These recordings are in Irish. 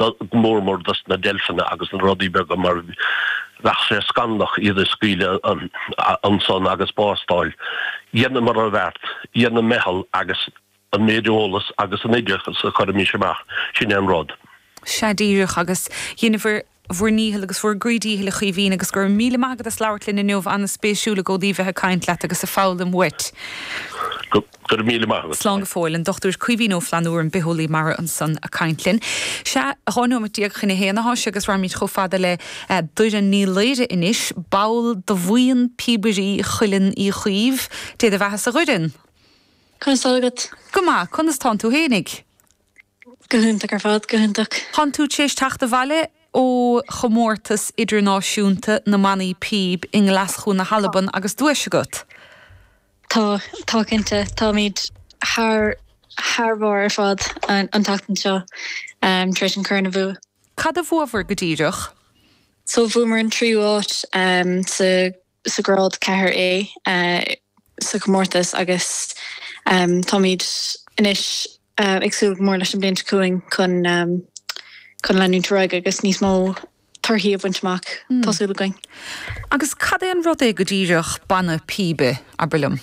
go mór mór dos na deilfeanna agus na rudaí beaga mar bheadh sé scannalach iad a scaoileadh ansan agus bás d'fháil. Dheineamar an bheart, dhein an meitheal agus an méid eolas agus an oideachas a chuirimís amach, sin é an rud. Sea díreach agus dheineabhair bhur ndícheall agus bhur gcroí díchill a Chaoimhín agus go raibh míle maith agat as labhairt linn inniu, ana-spéisiúil i gcónaí bheith ag caint leat agus a foghlaim uait. Go raibh míle maith agat. Slán go fóill. An Dr. Caoimhín Ó Flannabhra, an bitheolaí mara ansan a' caint linn. Sea, dhá nóimeat déag chun a haon atá sé agus raghaimid chomh fada le Doireann Ní Laoire anois, ball do bhuíon Píobairí Chuileann Uí Chaoimh. Dé do bheathasa a Dhoireann! Conas tá agat? Go maith, conas tánn tú fhéinig? Go hiontach ar fad, go hiontach. Tánn tú tar éis teacht abhaile ó chomórtas idirnáisiúnta na mbannaí píob i nGlaschú na hAlban agus duais agat. Tá, tá cinnte. Táimid thar, thar bharr ar fad an tseachtain seo tar éis an corn a bhua. Cad a bhuabhar go díreach? So bhuamar an tríú áit sa. sa ghrád 4A sa chomórtas agus táimid anois ag súil go mór leis an bhliain seo chugainn chun leanúint ar aghaidh agus níos mó torthaí a bhaint amach, tá súil againn. Agus cad é an rud é go díreach banna píbe, abair liom?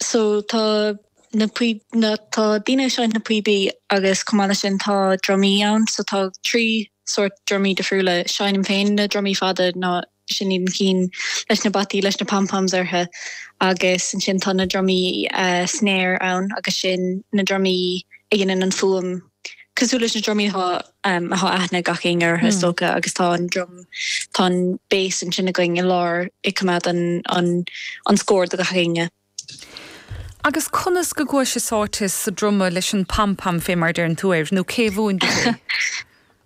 So tá na na tá daoine ag seinnt na píobaí agus chomh maith leis sin tá drumaí ann so tá trí sórt drumaí difriúla, seinnim féin na drumaí fada ná sin iad na cinn leis na bataí leis na pom-poms orthu agus ansin tá na drumaí snare ann agus sin na drumaí a dhéanann an fuaim cosúil leis na drumaí atá atá aithne ag gach éinne orthu is dócha agus tá an drum tá an bass ansin againn i lár ag coimeád an an an scór do gach éinne. Agus conas go gcuais-se sáite sa druma leis an pam pam fé mar a deireann tú air, nó cé a mhúin duit é?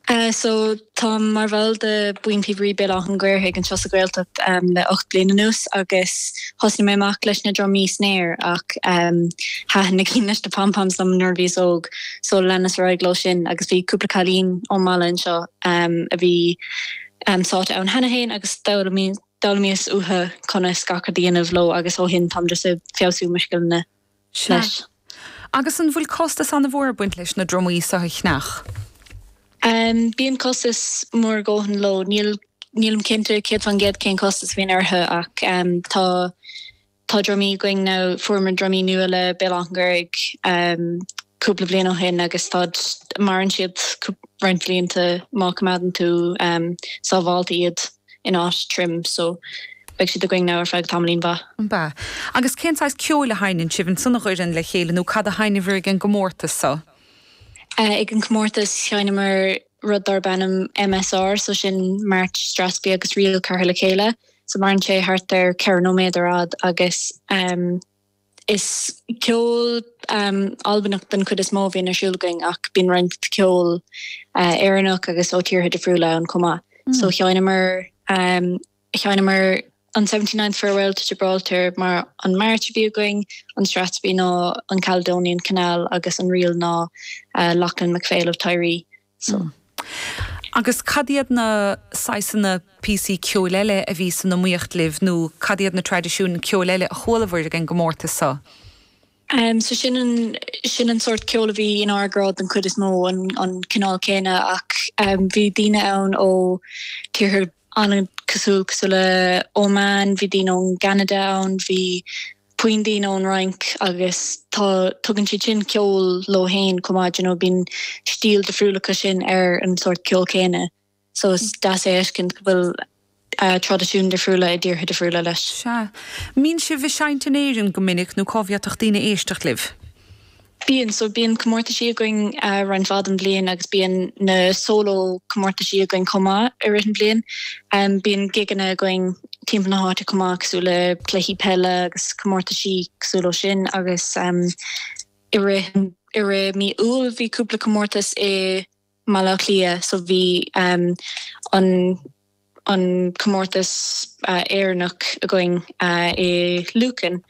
Eh, so táim mar bhall de Buíon Píobairí Béal Átha'n Ghaorthaidh anseo sa Ghaeltacht em le ocht bliain anuas agus thosnaigh mé amach leis na drumaí snare ach em thaitin na cinn leis na pam pams liom nuair a bhíos óg so leanas ar aghaidh leo sin agus bhí cúpla cailín ón mbaile anseo em a bhí em sáite ann cheana fhéin agus d'fhoghlaimíos d'fhoghlaimíos uathu conas gach rud a dhéanamh leo agus ó shin táim just ag feabhsú mo scileanna leis. Sea. Agus an bhfuil costas an-mhór ag baint leis na drumaí so a cheannach? Bíonn costas mór a dhóthain leo. Nílim cinnte céad faoin gcéad cén costas a bhíonn orthu ach tá. Tá drumaí againn now, fuaireamar drumaí nua le Béal Átha'n Ghaorthaidh cúpla bliain ó shin agus táid, maireann siad roinnt bhlianta má coimeádann tú sábhálta iad in áit tirim so beidh siad againn now ar feadh tamaillín mhaith. Bha. Agus cén saghas ceoil a sheinneann sibh, ansan i gCuileann le chéile nó cad a sheinneabhar ag an gcomórtas so? Ag an gcomórtas sheinneamar. rud darb ainm MSR, so sin March, Strathspey agus Reel curtha le chéile. So maireann sé thart ar ceithre nóiméad ar fad agus is ceol Albanach den chuid is mó a bhíonn ar siúl againn ach bíonn roinnt ceol Éireannach agus ó tíortha difriúla ann chomh maith. So sheinneamar Sheinneamar an Seventy Ninth Farewell to Gibraltar mar an march a bhí againn, an Strathspey ná an Caledonian Canal agus an ríl ná Lochlann MacPhail of Tiree. So. Agus cad iad na saghasanna píosaí ceoil eile a bhí san iomaíocht libh nó cad iad na traidisiúin ceoil eile a chualabhair ag an gcomórtas so? Em, so sin an, sin an sórt ceoil a bhí inár ngrád den chuid is mó, an, an cineál céanna ach em bhí daoine ann ó tíortha an-cosúil, cosúil le Oman, bhí daoine ón gCeanada ann, bhí roinnt daoine ón Fhrainc agus tá, tugann siad sin ceol leo féin chomh maith, you know, bíonn stíl difriúil acu sin ar an sórt ceol céanna so is deas é a fheiscint go bhfuil traidisiúin difriúla i dtíortha difriúla leis. Sea. Mbíonn sibh ag seinnt in Éirinn go minic nó cá bhféadfadh daoine éisteacht libh? Bíonn, so bíonn comórtaisí againn roinnt mhaith den bhliain agus bíonn na solo comórtaisí againn chomh maith i rith an bhliain. Bíonn gigeanna againn timpeall na háite chomh maith cosúil le cluichí peile agus comórtaisí cosúil leo sin agus i rith i rith mí Iúil bhí cúpla comórtas i mBaile Átha Cliath so bhí an an comórtas Éireannach againn i Lucan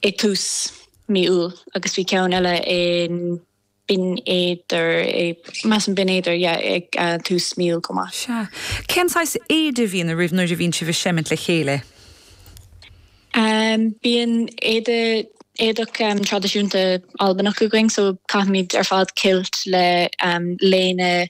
ag tús mí Iúil agus bhí ceann eile in Binn Éadair measaim Binn Éadair yeah ag tús mí Iúil chomh maith. Sea. Cén saghas éide a bhíonn oraibh nuair a bhíonn sibh ag seimint le chéile? Bíonn éide, éadach traidisiúnta Albanach againn so caithimid ar fad kilt le léine